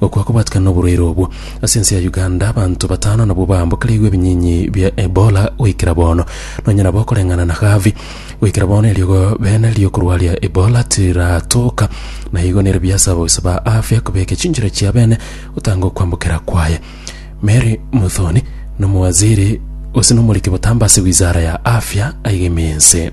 Gokwa kobatikana noborwaire obwo. Ase ense ya Uganda abanto batano nabwo baambokereigwe ebinyinyi bia Ebola goikera bono. Nonye nabo okoreng'ana na Harvey, goikera bono eriogo bene riokorwaria Ebola tiratoka, na igo nere biase abagusi ba afya kobeka chinchera chia bene gotanga okwambokera kwaye. Mary Muthoni nomowaziri gose nomoriki botambe ase wizara ya afya aigeme ense.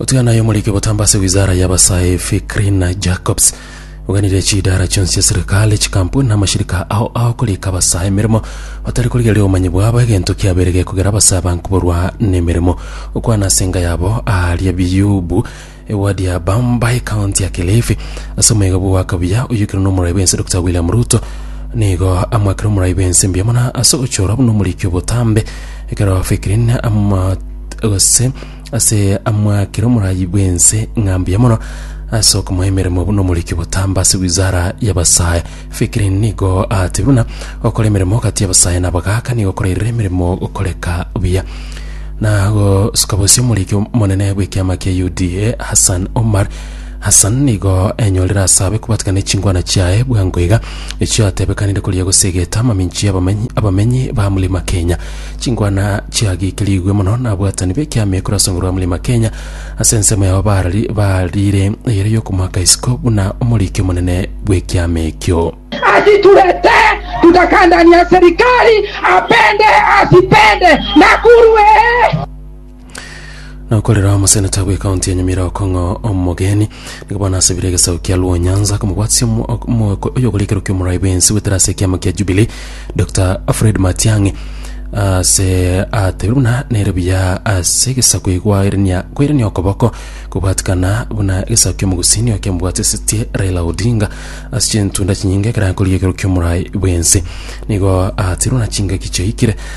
Otiana aye omoriki botambe ase wizara y'abasae Fikrina Jacobs oganire chidara chionsi chia serikali, chikampuni na amashirika ao agokorika abasae emeremo batari korigereria obomanyi bwabo egento kiabeire gekogera abasae aba nkoborwa nemeremo. Okwana ase enga yabo aaria Biyubu, ewadi ya Bamba, ekaonti ya Kilifi, ase omoegabo o Wakabuya oyoikirwe nomorai bw'ense Dokita William Ruto nigo amoakire omorai bw'ense mbuya mono ase ogochorwa buna omoriki obotambe ekero Fikrina ama gose Ase amwakire omorayi bw'ense ng'a mbuya mono ase okomoa emeremo buna omoriki botamba ase wizara y'abasae, Fikiri nigo aatebire buna gokora emeremo gati y'abasae na abagaaka nigo korairire emeremo gokoreka buya. Na gosuka bosie omoriki omonene bw'ekiama kia UDA, Hassan Omar Hassan nigo enyorire ase abe kobwatikana ne chingwana chiaye bwango iga, echiatebekanire koria gose egete amaminchi y'abamenyi abamenyi ba Mlima Kenya. Chinkwana chiagikirigwe mono nabwatani b'ekiama ekero ase nguru ya Mlima Kenya ase ensemo yabo barari barire eyere y'okomoaka isiko buna omoriki omonene bw'ekiama ekio. asitulete tukakandania serikali apende asipende Nakuru ee. Nokorera omoseneta bw'ekaunti ya Nyamira okong'o omogeni, nigo bono asabire egesaku kia Luo Nyanza komobwatisia omo- ok- omogooko oyogorekerwa kia omorai bwensi goetera ase ekiama kia Jubilee, Dr Fred Matiang'i ase atebire buna nere buya ase egesaku egwaerenia kwaerenia okoboko kobwatikana buna egesaku kia omogusini oyo kiamobwatisetie Raila Odinga ase chintunda chinyinge ekero akoriekerwa kia omorai bwensi. Nigo atebire buna chingaki chiaikire